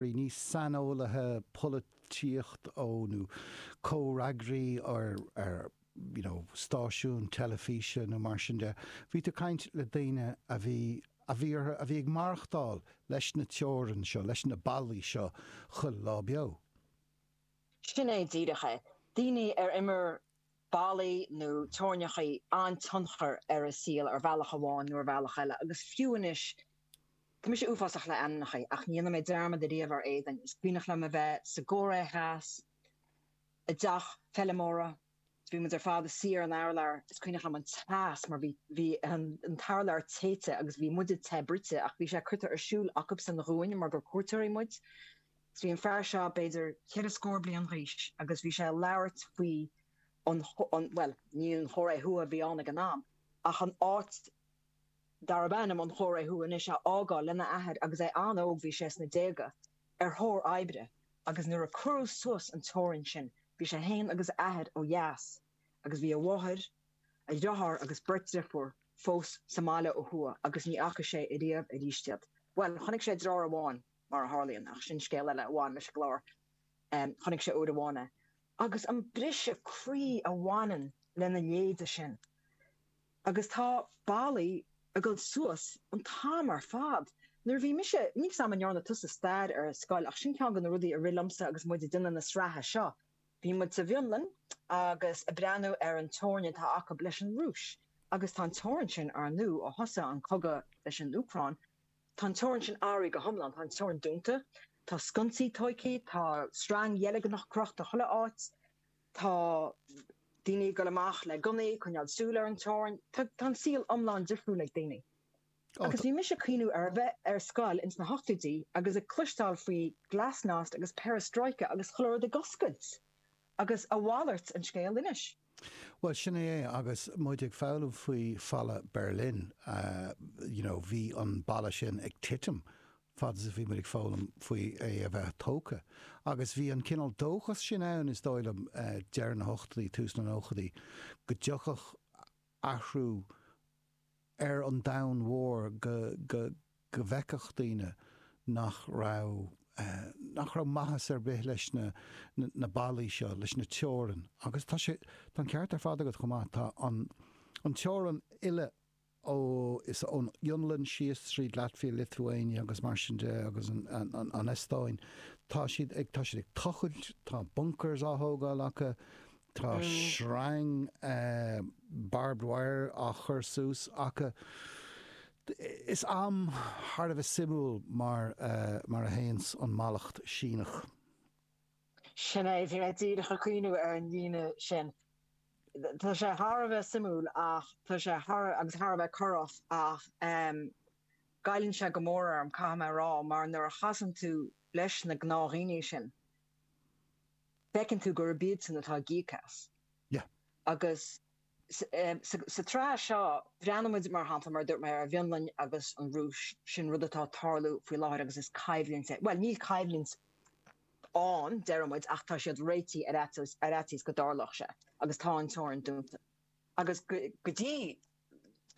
le níos saineolaithe polaitíocht ó nó comhfhreagraí ar ar you know stáisiún teilifíse nó mar sin de bhí tú caint le daoine a bhí a bhí orthu a bheith ag maireachtáil leis na teorainn seo leis na ballaí seo chuile lá beo. Sin é díreach é. Daoine ar imir ballaí nó teorainneacha an-tionchar ar a saol ar bhealach amháin nó ar bhealach eile agus fiú anois tá mise uafásach le ainmneacha ach ní dhéanfaidh mé dearmad ariamh ar éadain is cuimhneach liom a bheith sa gCóiré Theas i dteach feilmeora is bhí muid ar fad ár suí ar an urlár is cuimhneach liom an teas mar bhí bhí an t-urlár téite agus bhí muide te bruite ach bhí sé curtha ar siúl acubsan dhúinn mar gur cuairteoirí muid Bhí an fear seo b'fhéidir ceithre scór bliain g'aois agus bhí sé a' labhairt faoi an, an, bhuel, ní an Chóiré Thuaidh a bhí ann ag an am ach an áit darb ainm an Chóiré Thuaidh anois, a fhágáil lena athair agus é an-óg, bhí sé sna déaga, ar thóir oibre agus nuair a cuireadh suas an teorainn sin, bhí sé fhéin agus a athair ó dheas agus bhí a mháthair, a dhriotháir agus beirt driofúr fós sa mbaile ó thuaidh agus ní fhaca sé ariamh aríst iad. Bhuel, chonaic sé driotháir amháin. mar a tharlaíonn, ach sin scéal eile a bhain leis an gclár. Chonaic sé uair amháin é. Agus an briseadh croí a bhaineann lena leithéide sin. Agus tá ballaí ag dul suas an t-am ar fad. Nuair a bhí mise, níl fhios agam an ndearna tusa stair ar scoil ach sin ceann de na rudaí a rith liomsa agus muid ag déanamh na sraithe seo. Bhí muid sa bhFionlainn agus ag breathnú ar an teorainn atá acu leis an Rúis. Agus tá an teorainn sin ár ndú ó thosaigh an cogadh leis an Úcráin. Tá an teorainn sin athraithe go hiomlán, tá an teorainn dúnta, tá sconsaí tóigthí, tá sreang dheilgneach crochta chuile áit, tá daoine ag dul amach le gunnaí, coinneáil súil ar an teorainn, tá an saol iomlán difriúil ag daoine. Agus bhí mise ag cuimhneamh ar a bheith ar scoil ins na hochtóidí agus ag cloisteáil faoi glasnost agus perestroika agus chuile rud ag oscailt, agus a mhalairt an scéal anois. Bhuel, sin é é. Agus muid ag foghlaim faoi Falla Berlin, you know, bhí an balla sin ag titim fad is a bhí muid ag foghlaim faoi é a bheith tógtha. Agus bhí an cineál dóchas sin ann, is dóigh liom, deireadh na hochtóidí, tús na nóchaidí, go dtiocfadh athrú, ar an domhan mhór go bhfeicfeadh daoine nach raibh nach raibh maitheas ar bith leis na ballaí seo, leis na teorainn agus tá sé tá an ceart ar fad agat chomh maith, tá an an teorainn uile ó thuas ón Fhionlainn síos tríd Latvia, Lithuania agus mar sin de agus an an Eastóin, tá siad ag tá siad ag tochailt, tá bunkers á thógáil acu, Tá sreang barbed wire á chur suas acu. am thar a bheith suimiúil mar a théann an mallacht Síneach. Sin é, bhí mé díreach ag cuimhniú ar an líne sin. Tá sé thar a bheith suimiúil ach tá sé thar agus thar a bheith corrach ach goilleann sé go mór orm, caithfidh mé a rá, mar nuair a chasann tú leis na gnáthdhaoine sin, feiceann tú gurb iadsan atá ag íoc as. Agus sa tsraith seo, breathnaímid, mar shampla, mar a dúirt mé, ar an bhFionlainn agus an Rúis, sin rud atá ag tarlú faoi láthair agus is coimhlint é, bhuel, níl coimhlint ann, déarfaidh muid, ach tá siad réitithe ar fhaitíos go dtarlódh sé agus tá an teorainn dúnta. Agus go dtí.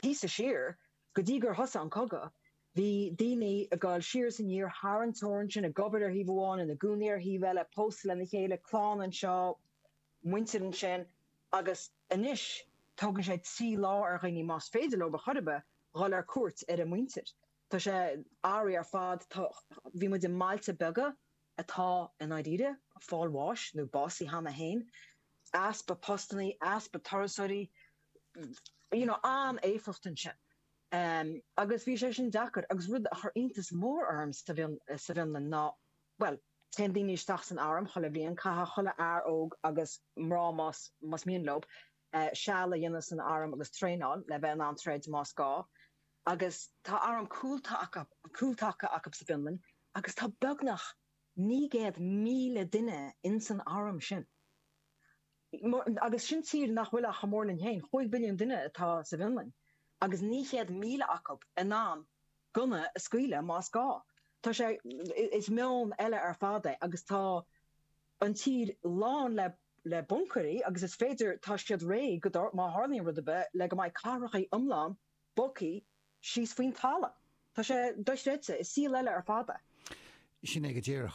píosa siar, go dtí gur thosaigh an cogadh, bhí daoine ag gabháil siar is aniar thar an teorainn sin, ag obair ar thaobh amháin, ina gcónaí ar thaobh eile, pósta lena chéile, clann anseo, muintir ansin, agus anois tógann sé trí lá ar dhaoine, más féidir leo ar chor ar bith, dhul ar cuairt ar a muintir. Tá sé, eerie ar fad, tá, bhí muid i mbailte beaga, atá i ndáiríre ag fáil bháis nó básaithe cheana féin, easpa postanna, easpa turasóirí, you know, an-éifeacht ansin. Agus bhí sé sin deacair agus rud a chuir iontas mór orm sa bhFionlainn ná, bhuel, téann daoine isteach san arm chuile bhliain, caithfidh chuile fhear óg agus mná más, más mian leo, seal a dhéanamh san arm agus traenáil le bheith in ann troid más gá. Agus tá arm cúltaca acu sa bhFionlainn agus tá beagnach 900,000 duine insan arm sin. Agus sin tír nach bhfuil ach chomh mór linn féin. Chúig mhilliún duine atá sa bhFionlainn agus 900,000 acu in ann gunna a scaoileadh más gá. Tá sé, is meon eile ar fad é agus tá an tír lán le buncaeirí agus is féidir, tá siad réidh, má tharlaíonn rud ar bith, le go mbeidh cathracha iomlána bogtha síos faoin talamh. Tá sé dochreidte. Is saol eile ar fad é. Sin é go díreach.